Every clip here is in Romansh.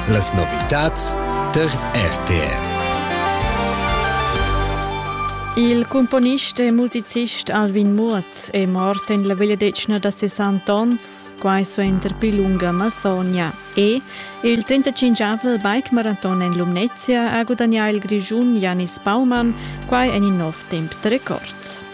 Las novitads tar RTR. Il cumponist e musicist Alvin Muoth è mort en la vegliadetgna da 60 onns, quai suenter pli lunga malsogna. E il 35-avel bike-maraton en Lumnezia ha gudagnà il Grischun Janis Baumann, quai en in nov temp de records.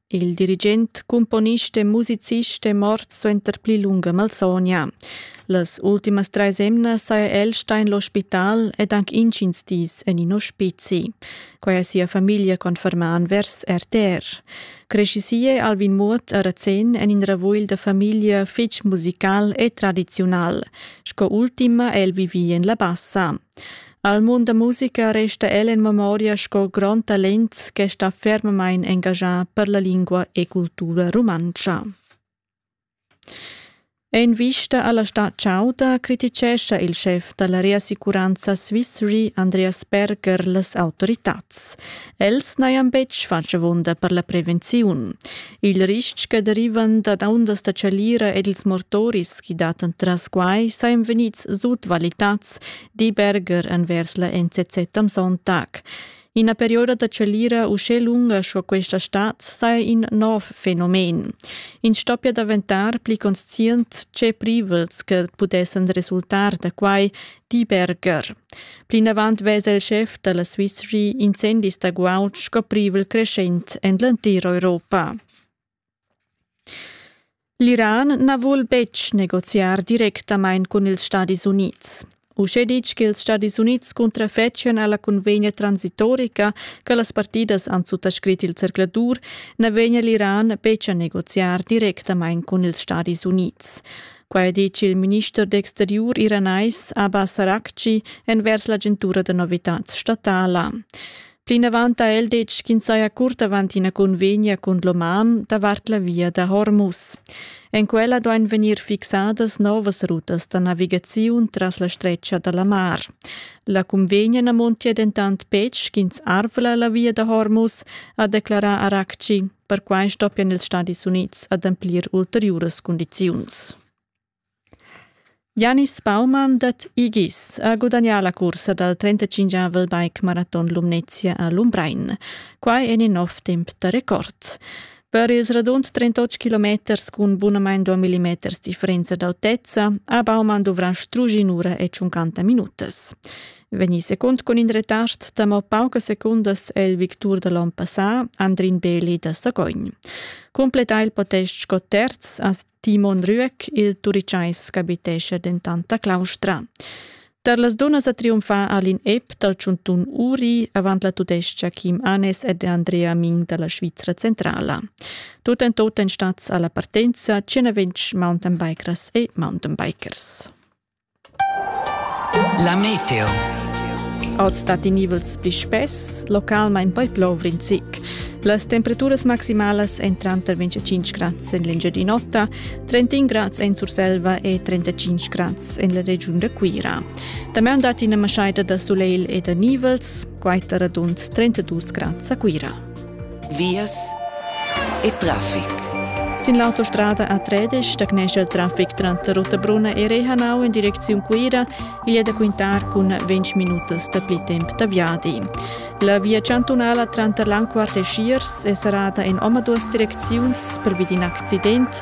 Il dirigent, cumponist e musicist è mort suenter pli lunga malsogna. Las ultimas treis emnas saja el stà en l'ospital ed anc intgins dis en in ospizi. Quai ha sia famiglia confermà envers RTR. Crescisie Alvin Muot a Razén en in ravugl da famiglia fitg musical e tradiziunal. Sco ultima è el vivi en la Bassa. Al mund da musica resta el en memoria sco grond talent che sta fermamain engagià per la lingua e cultura rumantscha. En vista alla stad chauda criticescha il chef dalla reassicuranza Swissre Andreas Berger las autoritads. Els n'hajan betg fatg avunda per la prevenziun. Il ristg che derivan dad ondas da chalira ed ils mortoris chi datan tras quai sajan vegnids sutvalitads di Berger envers la NCC Tamson Tag. Ina perioda da chalira uschè lunga sco questa stad saja in nov fenomen. Ins stoppia daventar pli conscient tge privels che pudessan resultar da quai, di Berger. Plinavant vesa il schef da la Swiss Re incendis da guaud sco privel creschent en l'entira Europa. L'Iran na vul betg negoziar directamain cun ils Stadis Unids. Uschè ditg ch'ils Stadis Unids cuntrafetschan a la cunvegna transitorica che las partidas han suttascrit il zercladur, na vegnia l'Iran betg a negoziar directamain cun ils Stadis Unids. Quai ha ditg il minister d'exteriur iranais Abbas Araghchi envers l'agentura da novitads statala. Plinavant ha el detg ch'ins saja curt avant ina convegna cun l'oman davart la via da Hormuz. En quella duain vegnir fixadas novas rutas da navigaziun tras la stretga da la mar. La convegna na montia dentant betg ch'ins arvla la via da Hormuz, ha declarà Arakci. Perquai stoppian ils Stadis Unids ademplir ulteriuras cundiziuns. Janis Baumann dad Igis ha gudagnà la cursa dal trentacinchavel bike-maraton Lumnezia a Lumbrein. Quai en in nov temp da record. Per ils radund 38 kilometers cun bunamain 2 mm differenza d'autezza ha Baumann duvrà strusch in'ura e 50 minutas. Vegnì secund cun in retard da mo paucas secundas è il victur da l'onn passà, Andrin Beli da Sagogn. Cumplettà il podest sco terz ha Timon Rüeck, il Turichais ch'abitescha dentant a Claustra. Tar las dunnas a triumfar Alin Epp dal Tschuntun Uri avant la tudestga Kim Anes ed Andrea Ming da la Svizra centrala. Tut en tot en stats alla partenza 120 mountainbikers e mountainbikers. La meteo. Oz dat i nivels pli spess, localmain poi plover in zic. Las temperaturas maximalas èn tranter 25 grads en l'Engiadin'Ota, 31 grads en Surselva e 35 grads en la regiun da Cuira. Damaun dat ina maschaida da sulegl e da nivels, quai tar radund 32 grads a Cuira. Vias e traffic. Sin l'autostrada A13 stagnescha il traffic tranter Rottabrunna e Rehanau in direcziun Cuira. Igl è da quintar cun 20 minutas dapli temp da viadi. La via chantunala tranter Langquart e Schiers è serrada en omaduas direcziuns pervi d'in accident.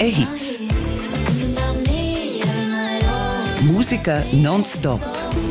E Hits. Musica non stop.